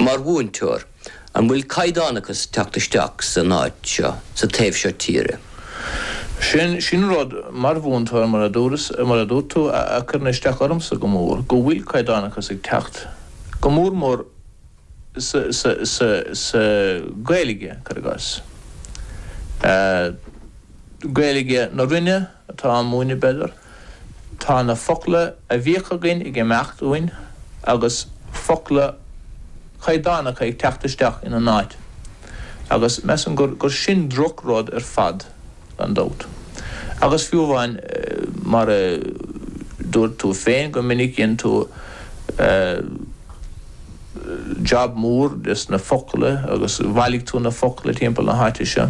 Mar mhúinteoir, an bhfuil caighdeánachas ag teacht isteach san áit seo, sa taobh seo tíre? Sin, sin rud, mar mhúinteoir, mar a dúras, mar a dúirt tú, a, a cuireann isteach ormsa go mór, go bhfuil caighdeánachas ag teacht, go mór mór sa, sa, sa, sa Gaeilge, cuir i gcás, eh, Gaeilge na Rinne, atá á múineadh, b'fhéidir. Tá na focla a bhíodh againn ag imeacht uainn agus focla caighdeánacha ag teacht isteach ina n-áit agus measaim gur sin drochrud ar fad, gan dabht. Agus fiú amháin, mar a dúirt tú féin go minic, dhein tú jab mór des na focla agus bhailigh tú na focla timpeall na háite seo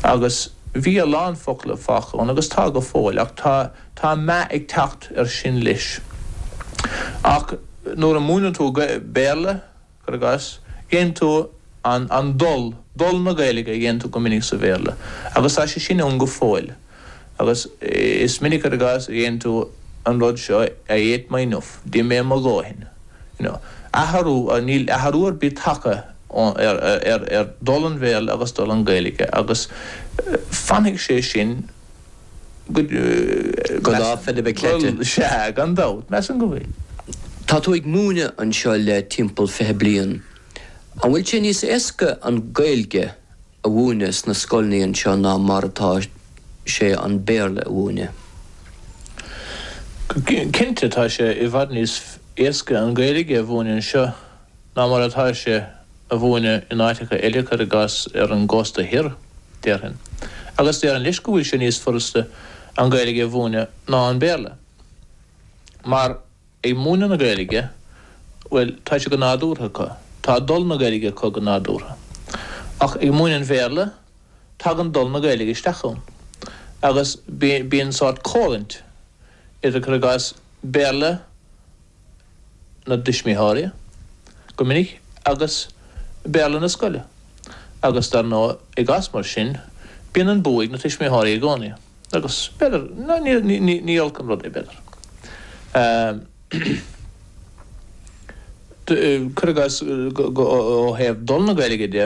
agus, Bhí a lán focal fágtha ann agus tá go fóill ach tá tá meath ag teacht ar sin leis. Ach nuair a múineann tú Béarla, cuir i gcás, déanann tú an an dul, dul na Gaeilge a dhéanann tú go minic sa Bhéarla agus tá sé sin ann go fóill agus is minic, cuir i gcás, a déarfadh tú an rud seo I ate my nuff, d'ith mé mo dhóthain. you know. Athrú, níl athrú ar bith tagtha ar, ar dhul an Bhéarla agus dul an Gaeilge agus fanfaidh sé sin go, go lá Philib a' Chleite. Bhuel, sea, gan dabht, measaim go bhfuil. Tá tú ag múineadh anseo le timpeall fiche bliain, an bhfuil sé níos éasca an Gaeilge a mhúineadh sna scoileanna anseo ná mar atá sé an Béarla a mhúineadh. Cinnte, tá sé i bhfad níos éasca an Ghaeilge a mhúineadh anseo ná mar atá sé a mhúineadh in áiteacha eile, cuir i gcás ar an gcósta thoir, déarfainn. Agus déarfainn, leis, go bhfuil sé níos furasta an Ghaeilge a mhúineadh ná an Béarla mar, ag múineadh na Gaeilge, bhuel, tá sé go nádúrtha acu, tá dul na Gaeilge acu go nádúrtha. Ach ag múineadh an Bhéarla, tagann dul na Gaeilge isteach ann. Agus bíonn sórt coimhlint idir, cuir i gcás, Béarla na dtuismitheoirí, go minic, agus Béarla na scoile. Agus dar ndóigh, i gcás mar sin, bíonn an bua ag na tuismitheoirí i gcónaí. Agus b'fhéidir, ní olc an rud é b'fhéidir. Cuir i gcás, ó thaobh dhul na Gaeilge de.